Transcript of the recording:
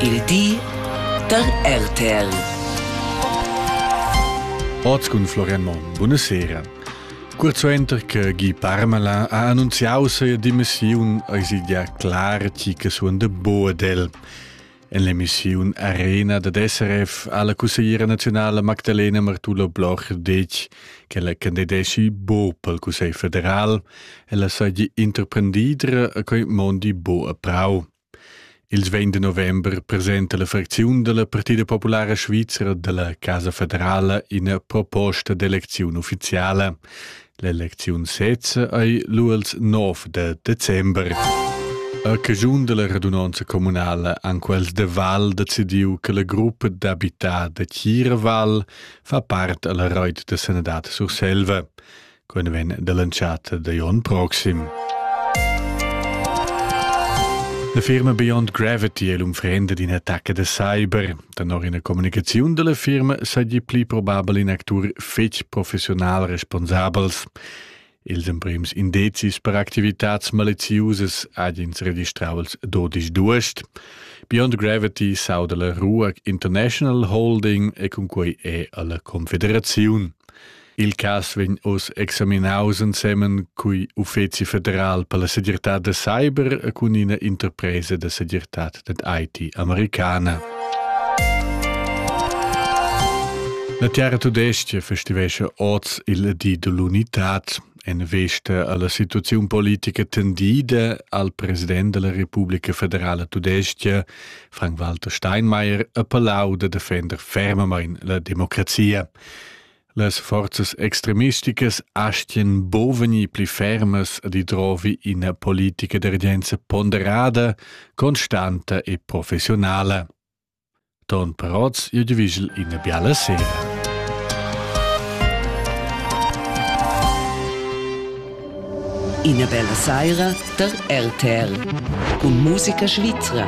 Il di da RTL. Oz cun Florian Monn. Buonasera. Kurz suenter che Guy Parmelin ha annunziau seia dimissiun, eisi ja clar tgi che suon de Boadel. En l'emissiun Arena dad SRF ha la cussegliera nazionale Magdalena Martula Bloch detg che la candidesci bo pel Cussegl federal e la saggi interprendidra a quei mondi bo a prau. Il vegn de november presenta la fracziun dalla Partida populara svizra dalla Casa federala ina proposta d'elecziun ufficiala. L'elecziun sezza ei lu els 9 de december. A cagiun della radunanza comunala han quels de Val decidiu che la gruppa d'abità de Chiraval fa part alla reit de Senadat Surselva. quella vegn dall'entschatta da Jon proxim. La firma Beyond Gravity è l'unfrenda d'in attacca da cyber. Danor ina communicaziun dalla firma saja pli probabel in actur fetg professional responsabels. Ils emprims indizis per activitads maleziusas ha ins registrau als 12 d'uost. Beyond Gravity sauda la Ruag International Holding e cun quei è alla Confederaziun. Il cass vegn oz examinaus ensemen cui uffeci federal per la segirtad da cyber cun ina interpresa da segirtad dad IT americana. La Terra Tudestia festivesce oz il di dell'unità en vesta alla situazione politica tendida al president della Repubblica Federale Tudestia, Frank-Walter Steinmeier, a Palau de defender fermamain la democrazia. Las forzas extremisticas astien buc vegnir pli fermas ad idrovi ina politica d'urgenza ponderada, constanta e professionala. Ton Perotz, jeu divigel ina biala sera. Ina bella saira der RTR. Und Musica Svizra.